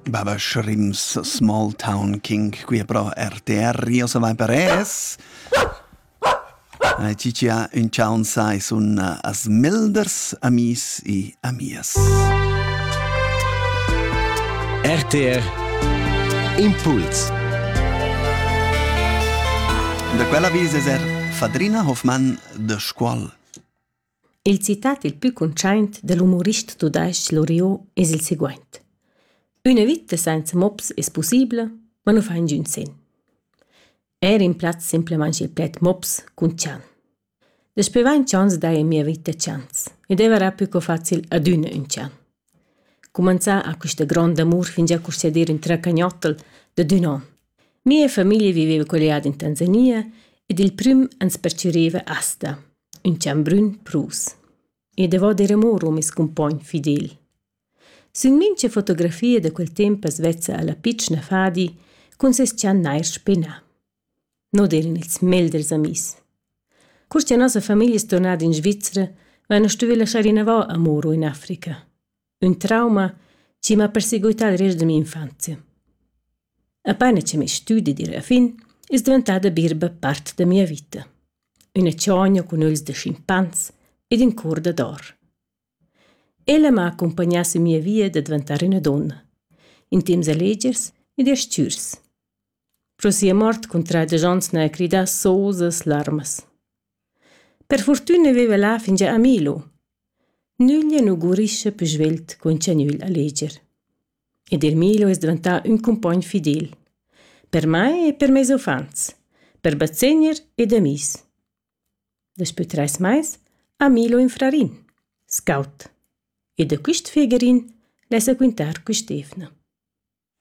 Baba Shrimps, Small Town King, qui è pro RTR, io se vai per es. Eh, Ci ci ha un ciao un sai sun eh, as milders amis e amias. RTR Impuls Da quella vis es er Fadrina Hoffmann de Scuol. Il citat il plü cuntschaint da l'umorist tudais-ch Loriot es il seguaint: Üna vita sainza mops es pussibla, ma nu fa ingün sen. Eir rimplaz simplamaing il pled mops cun chan. Daspö vain chans d'hair in mia vita chans e d'evair pü co facil adüna ün chan. Cumanzà ha quista grond'amur fingià custé d'ir ün tracagnottl dad ün on. Mia famiglia viveva colliada in Tanzania ed il prüm ans pertgüriva Asta. ün chambrun prus. E davò der amur meis cumpogn fidel. Sün mincha fotografia da quel temp as vezza la pitschna fadi cun seis channair spenà. No d'eran ils melders amis. Cur cha nossa famiglia es tornada in Svizra, vaina stuvü laschar inavò amuro in Africa. Ün trauma chi m'ha perseguità drez da minfanzia. Apaina cha meis stüdi di la fin, es davantada birba part da mia vita. Üna chogna cun ögls da schimpans ed ün cour dad or. Ella m'ha accumpagnà sün mia via da davantar üna donna, in temps alegers ed astürs. Pro sia mort cuntraja Jon Sner a cridar sosas larmas. Per fortüna viva là fingià a Milo. Nüglia nu gurischa pü svelt cun cha nügl a leger. Ed eir Milo es dvantà ün cumpogn fidel. Per mai e per meis uffants, per bazegner ed amis. Daspü trais mais ha Milo ün frarin, scout, e da quist figerin l'esa quintar quist'eivna.